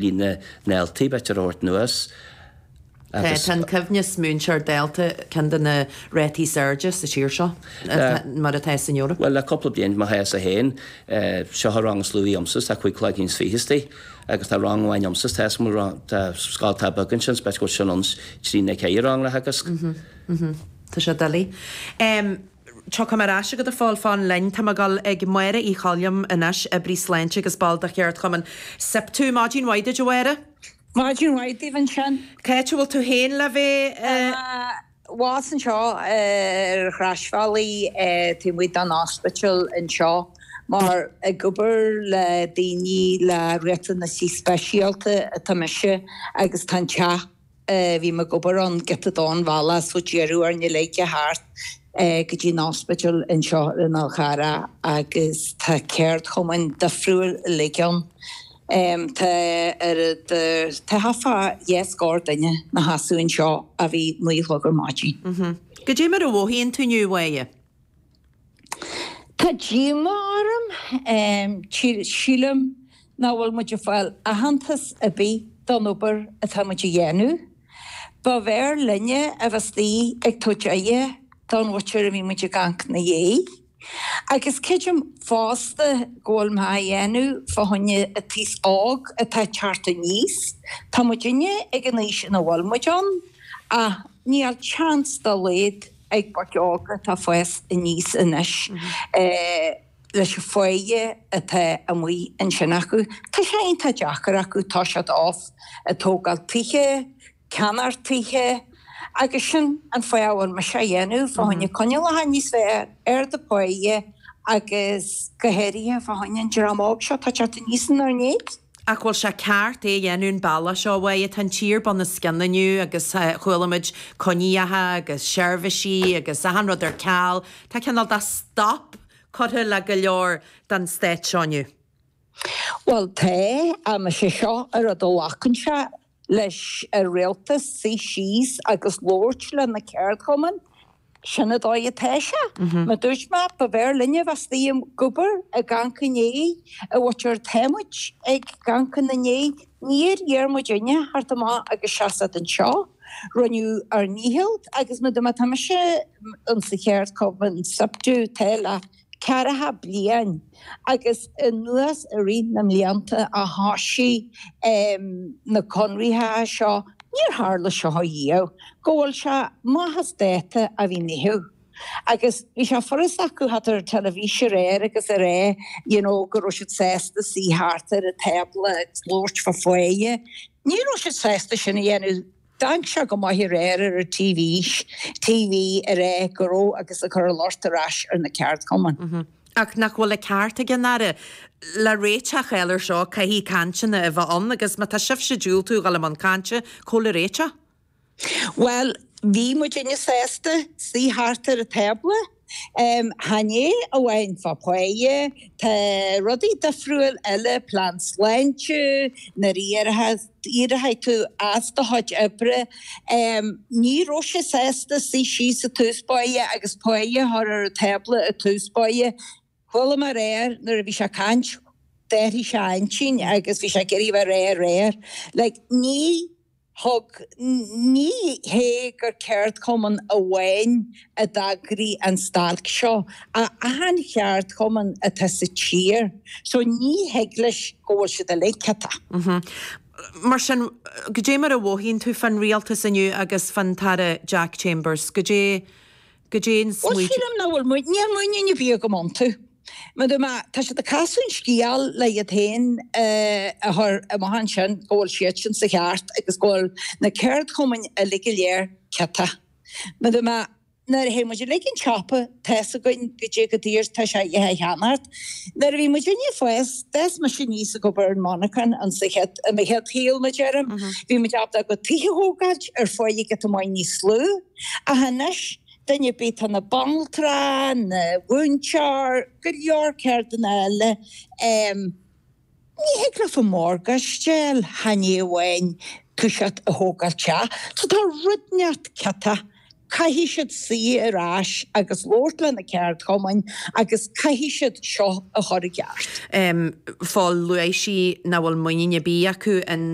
líne Neeltib et ar Ort Nuas agus. Tá an coibhneas múinteoir dalta ceann de na rátaí is airde sa tír seo mar atá san Eoraip. Bhuel le cúpla bliain má théas 1. Seo an rang is lú agamsa agus tá cúig cloigne is fiche istigh agus tá rang amháin agamsa tá is má tá scoil atá beag ansin spéis go bhfuil sin ionns trí nó ceithre rang le teagasc. Tá sé doiligh. Tiocfaidh mé ar ais agat ar ball fan linn. Tá mé ag dul ag Máire Uí Choilm anois, oibrí sláinte agus ball de Cheardchumann SIPTU. Maidin mhaith duit, a Mháire. Maidin mhaith duit ansin. Cá háit a bhfuil tú féin le bheith? Abhus anseo ar an Chroisbhealaigh taobh amuigh den ospidéal anseo mar ag obair le daoine le riachtanaisí speisialta atá mise agus tá an teach Bhím ag obair ón gcéatadán balla sa deireadh arna leagan thart go dtí an ospidéal anseo i nGaoth Gharra agus tá ceardchumainn difriúil uilig ann. Tá ar a dteitheadh fá dheich scór duine na hasúin seo a bhí naoi gchlog ar maidin. Go dtí mar a mhothaíonn tú inniu uaidh. Tá díomá orm. Sílim nach bhfuil muid ag fáil aitheantas ar bith don obair atá muid a dhéanamh. Ba bhfearr linne a bheith istigh ag tabhairt aire don mhuintir a bhí muid ag amhanc 'na dhiaidh. Agus creidim fosta go bhfuil muid á dhéanamh fá choinne an t-aos óg atá ag teacht aníos. Tá muidinne ag an aois ina bhfuil muid ann ach níl seans dá laghad ag boic óga atá ag fás aníos anois leis an pháighe atá amuigh ansin acu. Tá sé iontach deacair acu, tá siad off ag tógáil tithe, ag ceannacht tithe agus sin an fáth a bhfuil mise á dhéanamh fá choinne coinníollacha níos fearr, ardú páighe agus go háirithe fá choinne an dream óg seo atá ag teacht aníos inár ndiaidh. Ach bhfuil sé ceart é a dhéanamh an bealach seo, a Mháire? Tá an tír bunoscionn inniu agus chualaimid coinneacha agus seirbhísí agus achan rud ar ceal. Tá cineál de stop curtha le go leor den stát seo inniu. Bhuel, tá, ach más é seo an rud a ghlacann sé leis an rialtas suí síos agus labhairt le na ceardchumainn, sin an dóigh atá sé. Mar a dúirt mé, ba bhfearr linne a bheith istigh ag obair ag amhanc i ndiaidh an mhuintir atá muid ag amhanc ina ndiaidh níor iarr muidinne a theacht amach agus seasamh anseo. Rinneadh ár ndícheall agus mar a dúirt mé, tá mise ins an cheardchumann, SIPTU, tá le ceathracha bliain agus anuas i rith na mblianta a thosaigh na conraithe seo, níor tharla seo riamh, go bhfuil sé maith as dáta a bhí ní thiú. Agus bhí sé furast acu teacht ar an teilifís aréir agus a rá you know go raibh siad sásta suí thart ar an tábla agus labhairt fá pháighe. Ní raibh siad sásta sin a dhéanamh. D'amharc sé go maith aréir ar an TV a rá go raibh agus a chur an locht ar ais ar na ceardchumainn. Ach nach bhfuil an ceart ag an Aire, le réiteach a fháil ar seo, caithfidh cainteanna a bheith ann agus má tá sibhse ag diúltú a dhul i mbun cainte, cá bhfuil an réiteach? Bhuel, bhí muidinne sásta suí thart ar an tábla. Chan é amháin fá páighe, tá rudaí difriúil eile, plean sláinte, nuair a éireochaidh tú as do chuid oibre. Ní raibh sé sásta suí síos i dtús báire agus páighe a chur ar an tábla i dtús báire. Chuala mé aréir nuair a bhí sé ag caint, d'athraigh sé a intinn agus bhí sé ag iarraidh ag rá aréir. Like, ní. thuig ní hé gur ceardchumann amháin a d'eagraigh an stailc seo, achan cheardchumann atá sa tír so ní thig leis go bhfuil siad uilig ciotach. Mar sin, goidé mar a mhothaíonn tú fán Rialtas inniu agus fán Aire Jack Chambers? Goidé go dtéann an Ó smaoineamh. sílim nach bhfuil muid, níl muinín ar bith agam iontu. Mar a dúirt mé, tá siad ag casadh an scéil le iad féin a chur amach ansin go bhfuil siadsan sa cheart agus go bhfuil na ceardchumainn uilig go léir ciotach. Mar a dúirt mé, nuair a théann muid 'uig an tsiopa, tá a fhios againn goidé chomh daor atá sé rudaí a cheannacht. Nuair a bhí muidinne ag fás, d'fhás mise aníos ag obair i monarchana sa chéad, i mo chéad shaol, mar a deirim, bhí muid ábalta ár gcuid tithe a thógáilt ar pháighe giota maith níos lú, Ach anois, duine ar bith, atá ina bhanaltra, ina mhúinteoir, go leor ceirdeanna eile, em, ní thig leat an morgáiste a fháil, chan é amháin toiseacht a thógáil teach. So tá rud inteacht ciotach. Caithfidh siad suí ar ais agus labhairt le na ceardchumainn agus caithfidh siad seo a chur i gceart. em, Fál, luaigh sí nach bhfuil muinín ar bith acu in.